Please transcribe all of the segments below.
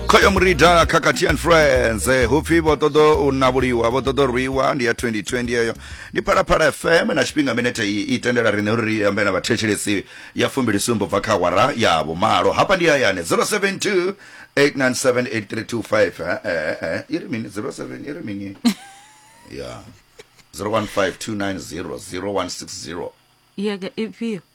khoyo murida khakhathi and friends eh, hupfi vho ṱoḓo u navhuliwa vho ṱoḓo rwiwa ndi ya 2020 yeyo ndi phalaphala fm na tshifhinga minete iyi i tendela riṋe uri ri ambe na vhathetshelesi ya fumbili sumbo bva kha awara ya vhumalo hafha ndi hayani 072 8978325 eh, eh, eh, i ri mini 07 i ri mini ya 0152900160 yeke ifhio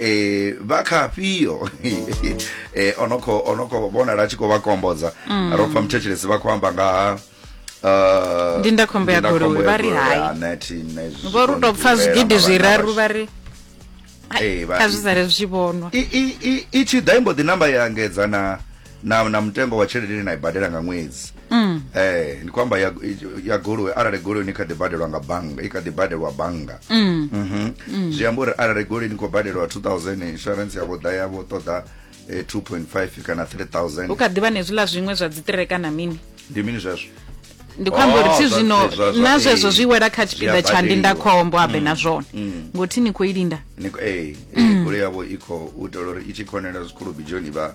eh vha kha afhio eh ono kho ono kho vhonala a tshi khou vha kombodza mm. ro pfa muthetshelesi vha khou amba nga ha uh, ndi nda khombo ya goloi vha ri hai vho ri tou pfa zwigidi zwiraru vha ri eh, kha zwi sale zwi tshi vhonwa i tshi ḓa imbo ḓi namba ya engedza na na, na mutengo wa tshelede ine na i badela nga ṅwedzi mm. eh, ndi khou amba ya, ya goloi arali goloi ni kha ḓi badelwa nga bannga i kha ḓi badelwa bannga mm. mm -hmm. mm. zwi amba uri arali goloi ni khou badelwa 2000 insurance yavho ḓa yavho ṱoḓa eh, 2.5 kana 3000 u kha ḓivha nezwiḽa zwiṅwe zwa dziṱire kana mini ndi mini zwezwo ndi khou amba uri oh, thi zwino na zwezwo zwi wela kha tshipiḓa tsha ndindakhombo habe mm. na zwone mm. ngothi ni khou i linda goloi yavho i khou u itela uri i tshi khonela zwikhulu bijoni vha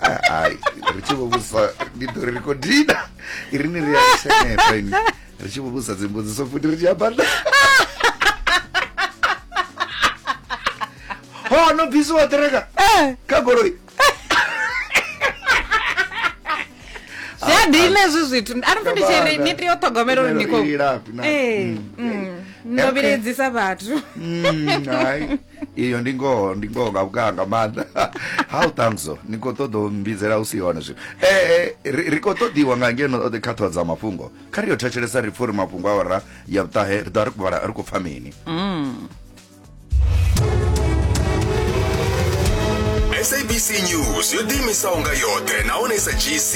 hai ri tshi vhuvhusa ndi ḓo ri ri khou dina i ri ni ri ya seneta ini ri tshi vhuvhusa dzimbudziso futhi ri tshi amba na ho no bvisiwa ṱereka kha goloi zwi a dina hezwi zwithu a ri ndi tshi ri ni tea u ṱhogomela uri ni khou Ilafhi na- ee Mm, mm. no vhiledzisa vhathu Mm, hai iyo ndi ngoho ndi ngoho nga vhukaa nga maanḓa how tangso ni khou ṱoḓa u mbidzela u si hone zwino ee ri khou ṱoḓiwa nga ngeno kha ṱhoho dza mafhungo kha ri yo thetshelesa ri pfha uri mafhungo a ora ya vhuṱahe ri ḓo ri khou vhala ri khou pfha mini mm. sabc news yo ḓiimisaho nga yoṱhe nahone sa gc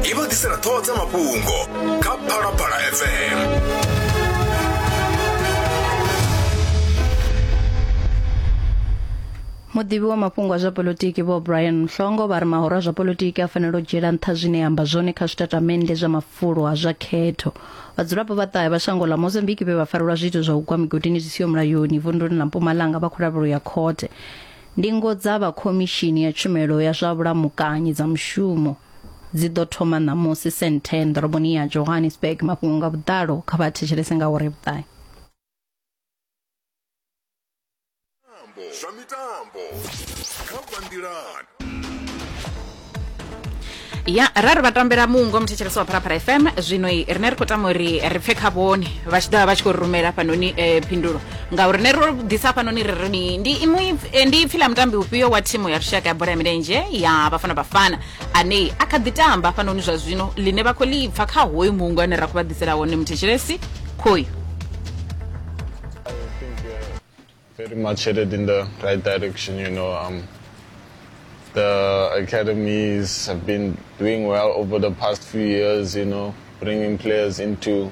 i vha ḓisela ṱhoho dza mafhungo kha phalaphala fm muḓivhi wa mafhungo a zwa polotiki vho brian mhlongo vha ri mahoro a zwa polotiki a fanela u dzhiela nṱha zwine ya amba zwone kha zwitatamennde zwa mafulo a zwa khetho vhadzulapo vha ṱahe vha shango ḽa mozambique vhe vha farelwa zwiito zwa u gwa migodini zwi siho mulayoni vunduni ḽa mpumalanga vha kholavhelo ya khothe ndingo dza vha khomishini ya tshumelo ya zwa vhulamukanyi dza mushumo dzi ḓo thoma ṋamusi senthen ḓoroboni ya johannesburg mafhungo nga vhuḓalo kha vha thetshelese nga uri vhuṱahe zwa mitambo kha bandilan ya ra ri vha tambela mungo muthetshelesi wa pharapara fm zwino rine ri khou tama uri ri pfe kha vhone vha tshi ḓovha vha tshi khou rumela fhanoni um phindulo ngauri ne ro ḓisa hafhanoni ri ri mini ndi iṅwe eh, ndi ipfi ḽa mutambi ufhio wa thimu ya lushaka ya bola ya milenzhe ya vhafana bafana ane a kha ḓi tamba hafhanoni zwa zwino ḽine vha khou ḽi pfa kha hoyu muungo ane ra khou vha ḓisela wone muthetshelesi khoyu very much headed in the right direction. You know, um, the academies have been doing well over the past few years. You know, bringing players into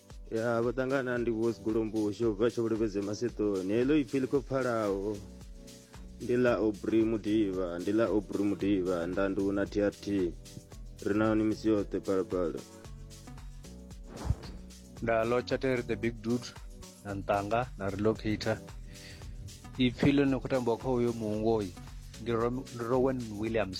ya vho ṱangana ndi vho sigolombo xo bva xo vhulevhedze masetoni heḽo ipfi ḽi khou pfalaho ndi ḽa obri mudiva ndi ḽa obri mudiva ndandu na trt ri na hone misi yoṱhe phalaphala nda lotsha tere the big dude na ntanga na relocator ipfi ḽo ni khou tambiwa kha uyo muungoyi ndi Rom- ndi rowan williams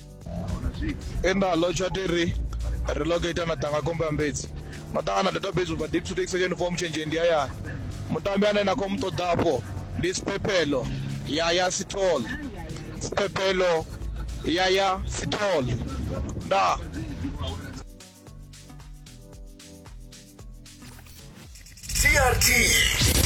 e nda lotsha ti ri ri locator na tanga komba mbedzi na tanga na database ba deep to take section form change ndi ya mutambi ane na khom ṱoḓafho ndi siphephelo ya ya sithole siphephelo ya ya sithole nda TRT